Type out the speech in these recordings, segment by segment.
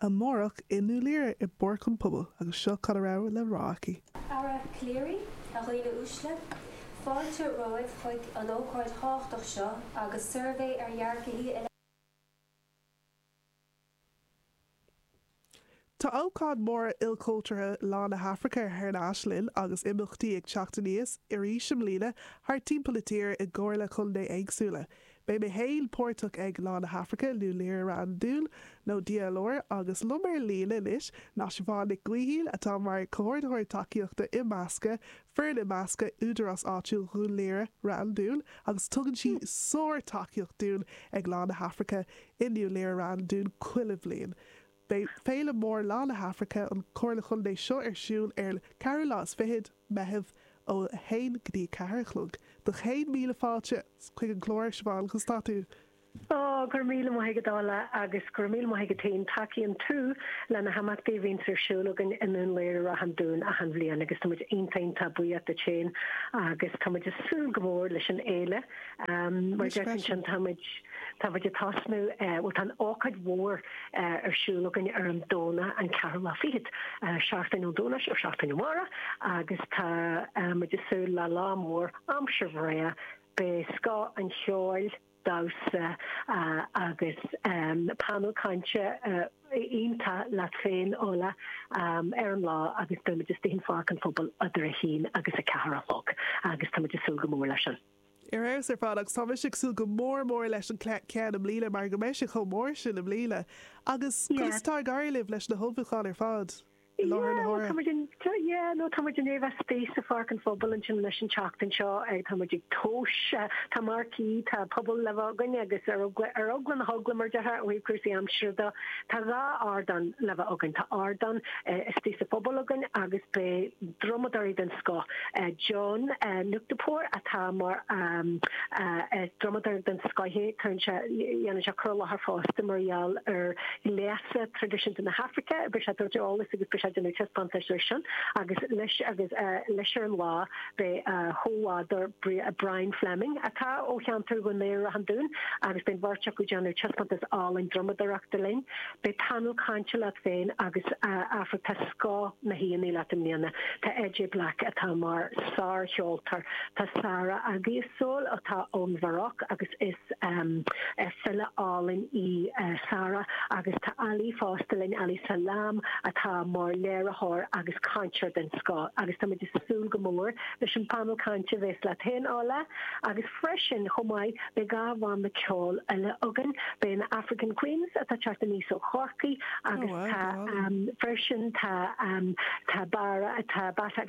amárach i nDún Laoghaire i bPáirc an Phobail agus seo cad a raibh le rá aici. A dhaoine uaisle, fáilte romhaibh chuig an ócáid thábhachtach seo agus suirbhé ar dhearcthaí i. Tá ócáid mhór ilchultúrtha Lá na hAfraice thar n-ais linn agus imeachtaí ag teacht aníos arís i mbliana thar timpeall na tíre i gComhairle Contae éagsúla. Beidh mé fhéin páirteach ag Lá na hAfraice nDún Laoghaire Ráth an Dúin nó DLR agus liom ar líne anois ná Siobhán Nic Gaoithín atá mar Comhordaitheoir Tacaíochta Imeasctha, Foireann Imeasctha Údarás Áitiúil Dhún Laoghaire, Ráth an Dúin agus tugann sí sár-tacaíocht dúinn ag Lá na hAfraice i nDún Laoghaire, Ráth an Dúin chuile bhliain. Beidh Féile Mór Lá na hAfraice an Chomhairle Chontae seo ar siúl ar an 4ú lá is fichid, Meitheamh, ó 1 go dtí 4 a chlog. So céad míle fáilte chuig an gclár, Siobhán conas atá tú! Go raibh míle maith agat, Ola, agus go raibh míle maith agat féin. Tacaíonn tú leis na himeachtaí a bhíonns ar siúl againn i nDún Laoghaire, Ráth an Dúin achan bhliain agus tá muid iontach iontach buíoch duit féin agus tá muid ag súil go mór leis an fhéile. Mar a deir tú ansin tá muid tá muid ag tosnú bhuel tá an ócáid mhór ar siúl againn ar an Domhnach an ceathrú lá fichead, seachtain ón Domhnach so seachtain ó amárach agus tá muid ag súil le lá mór aimsir bhreá, beidh scoth an cheoil, damhsa agus painéal cainte. iontach leat féin Ola ar an lá agus beidh muid istigh ansin i bPáirc an Phobail idir a haon agus a ceathair a chlog agus tá muid ag súil go mór leis sin. Ar fheabhas ar fad agus tá mise ag súil go mór mór leis an ce ceann i mbliana mar go mbeidh sé chomh mór sin i mbliana agus conas atá ag éirí libh leis na hullmhúcháin ar fad? i láthair na huaire? Yeah, no, tá muid i ndiaidh a bheith thíos i bPáirc an Phobail ansin anois an tseachtain seo, tá muid ag tomhas, tá marquee, tá puball le bheith againn agus ar eagla na heagla mar a déarfá ó thaobh cúrsaí aimsire de, tá dhá ardán le bheith againn, tá ardán istigh sa phuball againn agus beidh drumadóirí den scoth, John Nutekpor atá mar drumadóir den scoth, dhéanann sé cur i láthair fosta mar gheall ar. traidisiún de na hAfraice, beidh sé ag cur eolais agus beidh sé déanamh taispeántas air sin agus leis agus leis ar an lá beidh a chomrádaí Brian Fleming atá ó cheantar Dhún Laoghaire Ráth an Dúin agus beidh an bheirt acu ag déanamh taispeántas álainn drumadóireachta linn. Beidh painéal cainte leat féin agus a bhfuil tá scoth na n-aíonna leat i mbliana. Tá AJ Black atá mar sár-cheoltóir, tá Sara Aggie i Seoul atá ón Mharacó agus Is file álainn í Sara agus tá Ali fosta linn, Ali Salaam atá mar léiritheoir agus cainteoir den scoth agus táimid ag súil go mór leis an painéal cainte a bhéas leat féin, Orla, agus freisin chomh maith beidh dhá bhanna ceoil eile againn, beidh na African Queens atá ag teacht aníos ó Chorcaigh agus tá freisin tá Barra atá, Bata,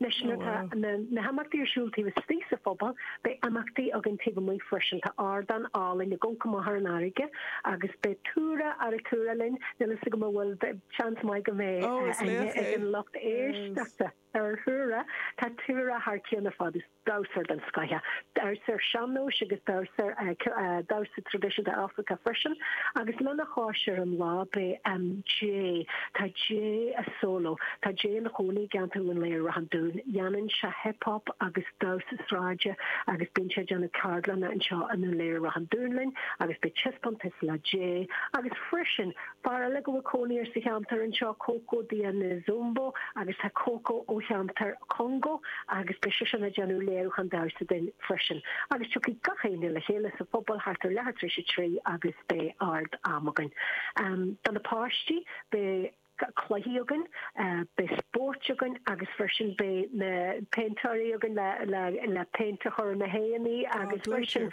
Leis na himeachtaí ar siúl taobh istigh sa phuball, beidh imeachtaí againn taobh amuigh freisin. Tá ardán álainn ag gobadh amach thar an fharraige agus beidh Tura Arutura linn, níl 'fhios agam an bhfuil seans maith go mbeidh aithne ag an lucht éisteachta ar Thura, tá Tura thar cionn ar fad. damhsóir den scoth, damhsa sean-nóis agus damhsa traidisiúnta Africa freisin agus lena chois ar an lá beidh Jay, tá Jay Asolo, tá Jay ina chónaí i gceantar Dhún Laoghaire Ráth an Dúin, dhéanann sé hip hop agus damhsa sráide agus bíonn sé ag déanamh ceardlanna anseo i nDún Laoghaire Ráth an Dúin linn agus beidh taispeántas le Jay agus freisin Fear eile go bhfuil cónaí air sa cheantar anseo Coco Diane Zumbo agus tá Coco ó cheantar Congo agus beidh seisean ag déanamh léiriúchán damhsa dúinn freisin. Agus tiocfaidh gach éinne le chéile sa phuball thart ar leathuair tar éis a trí agus beidh ard-am againn. Do na páistí beidh cluichí againn, beidh spóirt againn agus freisin beidh na péintéirí againn le péint a chur ar na haghaidheanna agus freisin.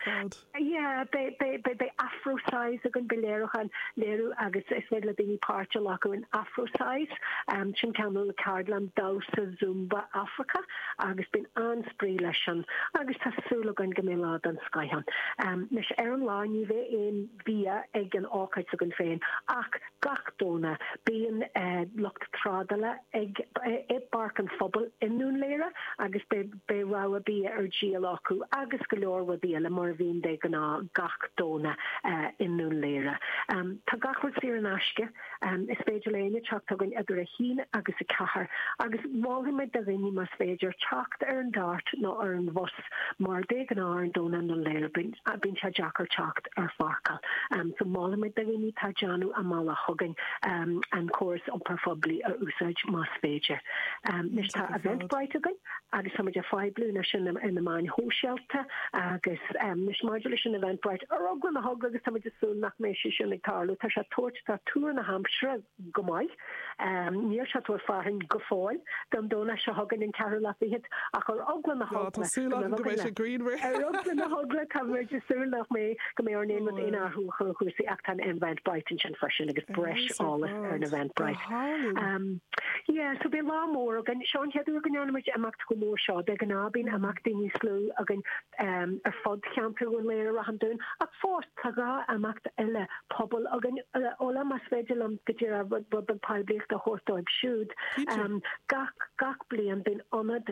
Yeah, beidh, beidh, beidh, beidh Afro-Size againn, beidh léiriúchán, léiriú agus is féidir le daoine páirt a ghlacadh in Afro-Size, um, sin cineál ceardlann damhsa Zumba Africa agus bíonn an-spraoi leis sin agus tá súil againn go mbeidh lá den scoth ann. Um, anois ar an lá ní bheidh aon bhia ag an ócáid s'againn féin ach gach Domhnach bíonn eh, lucht trádála ag, eh, i bPáirc an Phobail i nDún Laoghaire agus beidh, Beidh rogha bia ar díol acu agus go leor rudaí eile, mar a bhíonn de ghnáth gach Domhnach i nDún Laoghaire. Tá gach rud saor in aisce. Is féidir le héinne teacht chugainn idir a haon agus a ceathair agus mholfadh muid do dhaoine más féidir teacht ar an Dart nó ar an bhus mar de ghnáth ar an Domhnach i nDún Laoghaire bíonn sé deacair teacht ar pháirceáil so molaimid do dhaoine atá ag déanamh a mbealach chugainn an córas iompar phoiblí a úsáid más féidir. Anois tá Eventbrite againn. agus táimid ag poibliú anois ar na meáin shóisialta agus anois maidir leis an Eventbrite ar eagla na heagla agus táimid ag súil nach mbeidh sé sin ag tarlú. Tá sé ag tabhairt tá tuar na haimsire go maith. Níl sé ag tabhairt fearthainn go fóill don Domhnach seo chugainn an ceathrú lá fichead ach ar eagla na heagla, táimid ag súil nach mbeidh, go mbeidh ar aon rud aon athrú chuig cúrsaí ach tá an Eventbrite ansin freisin agus breis eolas ar an Eventbrite. Yeah so bíonn lá mór againn seo an chéad uair go ndéanaimid imeacht chomh mór seo de ghnáth bíonn imeacht daoine níos lú againn ehm ar fud cheantar Dhún Laoghaire Ráth an Dúin ach fós tá dhá imeacht eile pobail againn ó más féidir liom go díreach rud beag poiblíochta a thabhairt dóibh siúd ehm gach gach bliain bíonn ionad